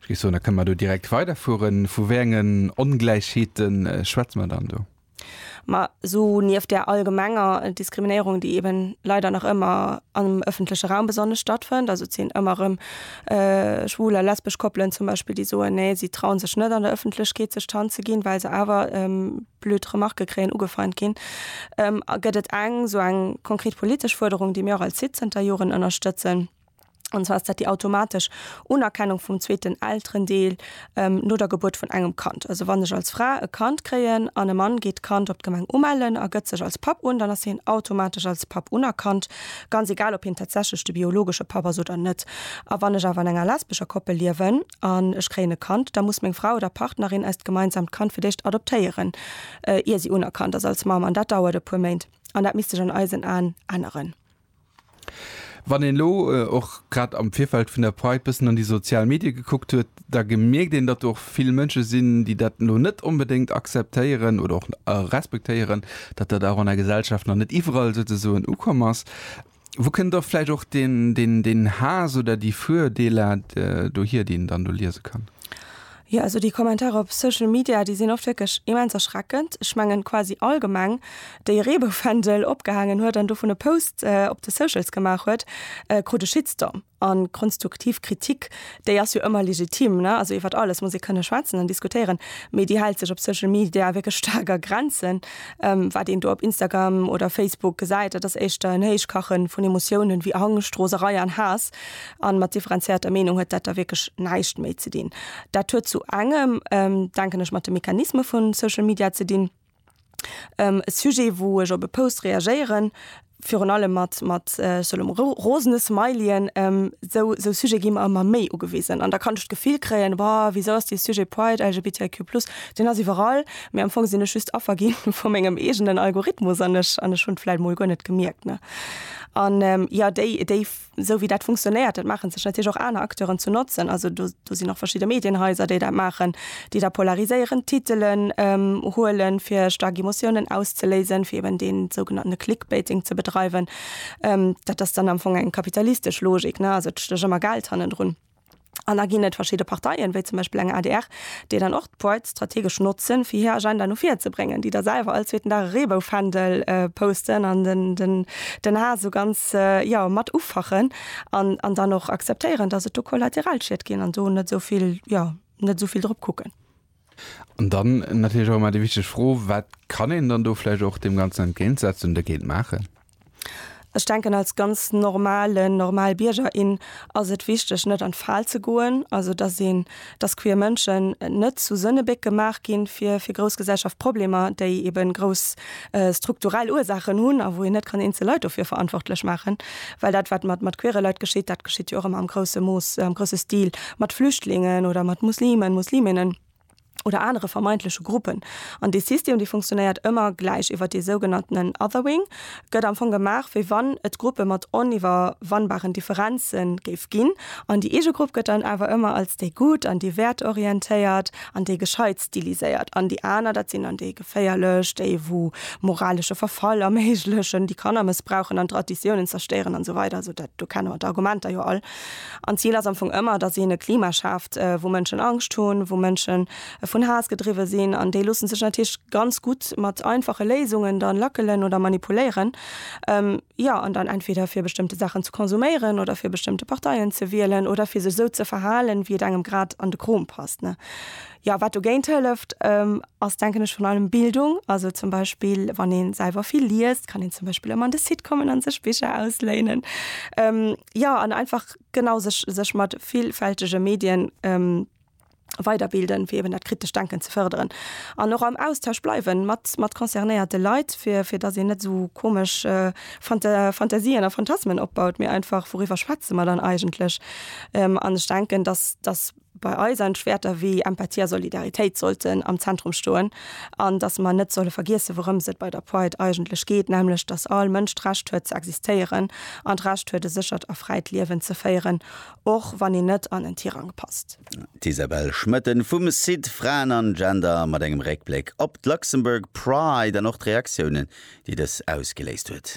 Ech géif soen, da kënne mer do direkt weiderfueren. Vu wéi engen Ongläichheete schwätze mer dann do? Ma esou nieft där allgemenger Diskriminéierung, déi eben leider nach ëmmer am ëffentleche Raum besonnesch stattfënnt, also et sinn ëmmer erëm schwul a lesbesch Koppelen zum Beispill, déi soen, nee, si trauen sech net an der Ëffentlechkeet sech d'Hand ze ginn, well se awer blöd Remarke kréien, ugefeint ginn, gëtt et eng esou eng konkret politesch Fuerderung, déi mir och als SID zënter Joren ënnerstëtzen, an zwar ass dat déi automatesch Unerkennung vum zweeten Elterendeel no der Gebuert vun engem Kand. Also wann ech als Fra e Kand kréien an e Mann geet d'Kand op d'Gemeng umellen a gëtt sech als Papp un, dann ass hien automatesch als Papp unerkannt, ganz egal ob hien tatsächlech de biologesche Papp ass oder net. A wann ech awer an enger lesbescher Koppel liewen an ech kréien e Kand, da muss meng Fra oder Partnerin eist gemeinsamt Kand fir d'éischt adoptéieren, ier si unerkannt ass als Mamm, an dat dauert e puer Méint. An dat misst sech an eisen Aen änneren. Wann een elo och grad am Virfeld vun der Pride bëssen an déi sozial Medie gekuckt huet, da gemierkt een, datt do och vill Mënsche sinn, déi dat elo net onbedéngt akzeptéieren oder och respektéieren, datt dat och an der Gesellschaft nach net iwwerall souzesoen ukomm ass. Wou kënnt da vläicht och deen Haass oder déi Virdeeler dohier, déi een dann do liese kann? Jo, also déi Kommentarer op Social Media, déi sinn oft wierklech immens erschreckend. Ech mengen quasi all Gemeng, déi e Reeboufändel opgehaangen huet an dovun e Post op de Socials gemaach huet, krut e Shitstorm. A konstuktiv Kritik, déi ass jo ëmmer legitim, ne? Also iwwert alles muss ee kënne schwätzen an diskutéieren, mee déi hält sech op Social Media wierklech staark a Grenzen. Wat een do op Instagram oder Facebook gesäit, dat ass éischter en Héichkache vun Emotiounen, wéi Angscht, Roserei an Haass. An mat differenzierter Meenung huet dat da wierklech näischt méi ze dinn. Dat huet zu engem, denken ech, mat de Mechanisme vu Social Media ze dinn. E Sujet, wou ech op e Post reagéieren, virun allem mat, mat, ech soen elo mol rosene Smileyen, esou, esou Sujete gi mer ëmmer méi ugewisen. An da kann ech d'Gefill kréien, Wa, wisou ass dee Sujet Pride, LGBTIQ plus, deen ass iwwerall. Mee am Fong sinn ech just Affer gi vu mengem eegenen Algorithmus an ech, an ech hunn et vläicht emol guer net gemierkt, ne? An jo, déi, déi esou wéi dat funktionéiert, dat maache sech natierlech och aner Acteuren zu Notzen. Also do sinn och verschidde Medienhaiser, déi dat maachen, déi da polariséierend Titelen huele fir staark Emotiounen auszeléisen, fir eben dee sougenannte Clickbaiting ze bedreiwen. Dat ass dann am Fong eng kapitalistesch Logik, also et stécht ëmmer Geld hannendrun. An da ginn et verschidde Parteien, wéi zum Beispill eng adr, déi dann och d'Pride strategesch notzen, fir hir Agenda no vir ze bréngen, déi da selwer all zweeten Dag e Reebou-Fändel posten an den Haass esou ganz, jo, mat ufachen an dann och akzeptéieren, dass et do Kollateralschied ginn an do net esou vill, jo, net esou vill drop kucken. An dann natierlech och ëmmer déi wichteg Fro, Wat kann een dann do vläicht och deem Ganzen entgéintsetzen, dergéint maachen? Ech denken, als ganz normalen, normal Bierger, in ass et wichteg, net an d'Fal ze goen. Also, dass een, dass queer Mënschen net zu Sënnebéck gemaach ginn, fir, fir grouss Gesellschaftproblemer, déi eben grouss strukturell Ursaachen hunn a wou een net kann eenzel Leit dofir verantwortlech maachen. Well dat, wat mat, mat queere Leit geschitt, dat geschitt jo och ëmmer am grousse Mooss, am grousse Stil mat Flüchtlingen oder mat Muslimen, Musliminnen oder anere vermeintleche Gruppen. An dee System, dee funktionéiert ëmmer gläich iwwer dee sougenanntenen Othering, gëtt am Fong gemaach, wéi wann et Gruppe mat oniwwerwannbaren Differenze géif ginn. An déi eege Grupp gëtt dann awer ëmmer als déi Gutt an déi Wäertorientéiert an déi Gescheit stiliséiert an déi aner, dat sinn dann déi. Féierlech, déi wou moralesche Verfall erméiglechen, déi Kanner mëssbrauchen an Traditiounen zerstéieren an esou weider. Also dat do kenne mer d'Argumenter jo all. An d'Zil ass am Fong ëmmer, datt een e Klima schaaft, wou Mënschen Angscht hunn, wou Mënschen vun Haass gedriwwe sinn. An déi loosse sech natierlech ganz gutt mat einfache Léisungen dann lackelen oder manipuléieren, jo, an dann entweder fir bestëmmte Saachen ze konsuméieren oder fir bestëmmte Parteien ze wielen oder fir sech esou ze verhalen, wéi et engem grad an de Krom passt, ne. Ja, wat dogéint hëlleft, ass denken ech vun allem Bildung. Also zum Beispill wann een selwer vill liest, kann een zum Beispill ëmmer an de Site kommen an sech Bicher ausléinen. Ja an einfach genau sech sech mat villfältege Medien weiderbilden, fir eben dat kritescht Denken ze fërderen. An och am Austausch bleiwen mat mat concernéierte Leit, fir fir datt een net esou komesch Fanta Fantasien a Phantasmen opbaut, mee einfach, wouriwwer schwätze mer dann eigentlech? An ech denken, datt datt bei eis an d'Wäerter wéi Empathie a Solidaritéit sollten am Zentrum stoen an datt mer net solle vergiessen, wourëms et bei der Pride eigentlech geet, nämlech datt all Mënsch d'Recht huet ze existéieren an d'Recht huet e séchert a fräit Liewen ze féieren, och wann een net an en Tirang passt. D'Isabelle Schmoetten vum Site Fraen an Gender mat engem Réckbléck op d'Luxembourg Pride an och d'Reaktiounen, déi dës ausgeléist huet.